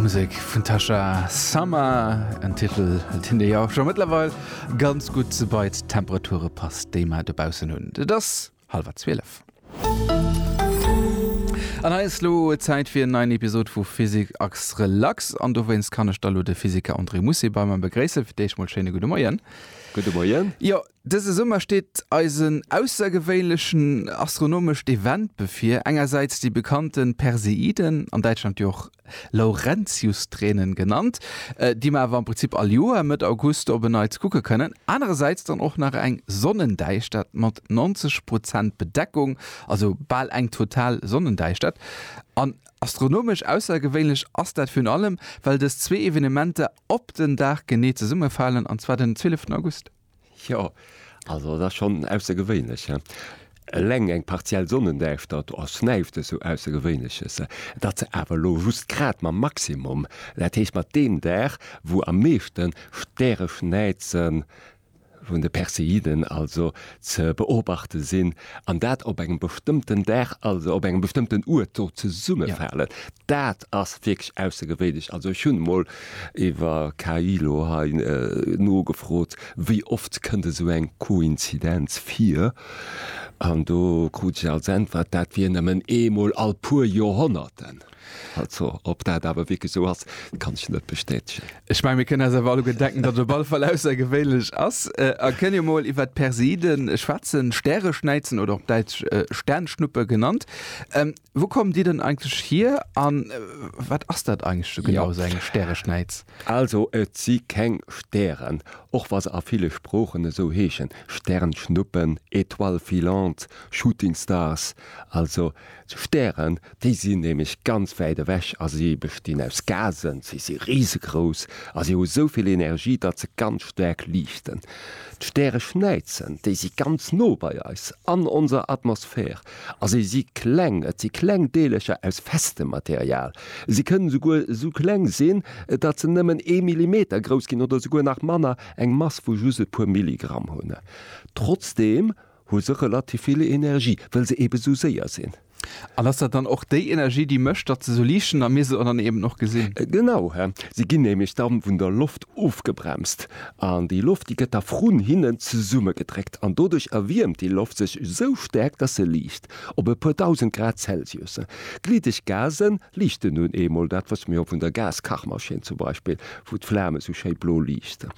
Musek vun Tasha Summer, en Titel, deen Dir jo scho mëttlerweil ganz gutt bei d'Temperature passt, déi mer dobaussen hunn. Et ass hallwer zwielef. An hei ass elo Zäit fir en neien Episod vu Physique Accès Relax. An dowéinst kann ech da elo de Physiker André Mussi bei mer begréissen. Fir d'éischt mol schéine gudde Moien. Gudde Moien. Jo, Dëse Summer steet eis en aussergewéinlechen astronomescht Event bevir, engersäits déi bekannte Perseiden, an Däitschland jo och Laurentiustränen genannt, déi mer awer am Prinzip all Joer Mëtt August op en Neits kucke kënnen, anerersäits dann och nach eng Sonnendäischtert mat 90 Prozent Bedeckung, also bal eng total Sonnendäischtert. An astronomesch aussergewéinlech ass dat virun allem, well dës zwee Evenementer op den Dag genee zesummefalen, an zwar den 12 August. Jo, also et ass schonn aussergewéinlech, hä? Eleng eng partiell Sonnendäischtert, do ass näischt esou Aussergewéinleches. Et ass awer elo just grad mam Maximum, dat heescht mat deem Dag, wou am meeschte Stäreschnäize vun de Perseiden also ze beobachte sinn. an dat op engem bestëmmten Dag, also op engem bestëmmten Uert do zesummefalen, ja. dat ass wierklech aussergewéinlech. Also ech hunn emol iwwer KI lo hei nogefrot, wéi oft kënnt esou eng Koinzidenz vir? An do krut ech als Äntwert, dat wier nëmmen eemol all puer Joerhonnerten. Also, ob dat awer wierklech esou ass, kann ech net bestätegen. Ech mengen, mir kënnen eis awer alleguer denken, datt et op alle Fall aussergewéinlech ass. A kënn jo mol iwwert d'Perseide schwätzen, Stäreschnäizen oder op Däitsch Sternschnuppe genannt. Wou kommen déi dann eigentlech hier a wat ass dat eigentlech esou genau, esou eng Stäreschnäiz? Also, et si keng Stären, och wa se a ville Sproochen esou heeschen, Sternschnuppen, étoiles filantes, shooting stars. Also, Stären, déi sinn nämlech ganz wäit ewech a si bestinn aus Gasen. Si si risegrouss a si hu sou vill Energie, datt se ganz staark liichten. D'Stäreschnäizen, déi si ganz no bei eis an onser Atmosphär a si si kleng. Et si kleng Deelercher aus festem Material. Si kënnen esouguer sou kleng sinn, datt se nëmmen ee Millimeter grouss ginn oder esouguer nach manner, eng Mass vu just e puer Milligramm hunn. Trotzdeem hu se relativ vill Energie, well se eebe sou séier sinn. An ass dat dann och déi Energie, déi mécht, datt se sou liicht sinn a mir se dann eeben och gesinn? Genau, se ginn nämlech da vun der Loft ofgebremst an déi Loft, déi gëtt da vrun hinnen zesummegedréckt an doduerch erwiermt déi Loft sech sou staark, datt se liicht. Op e puer dausend Grad Celsius. Gliddeg Gase liichten nun eemol, dat wësse mir jo vun der Gaskachmaschinn zum Beispill, wou d'Flame sou schéi blo liichten.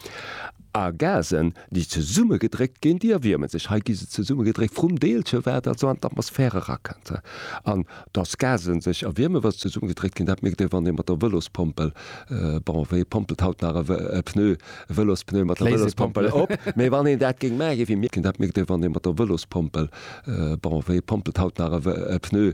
A Gasen, déi zesummegedréckt ginn, déi erwierme sech. Hei gi se zesummegedréckt vrum Deelche, wat also an d'Atmosphär erakënnt. An datt Gasen sech erwiermen, wa se zesummegedréckt ginn, dat mierkt ee wann ee mat der Vëlospompel, bon, wee pompelt haut nach e Pneu, e Vëlospneu mat der Vëlospompel op? Mee wann een dat géing maachen, wéi mir, dat mierkt ee wann ee mat der Vëlospompel, bon, wee pompelt haut nach e Pneu,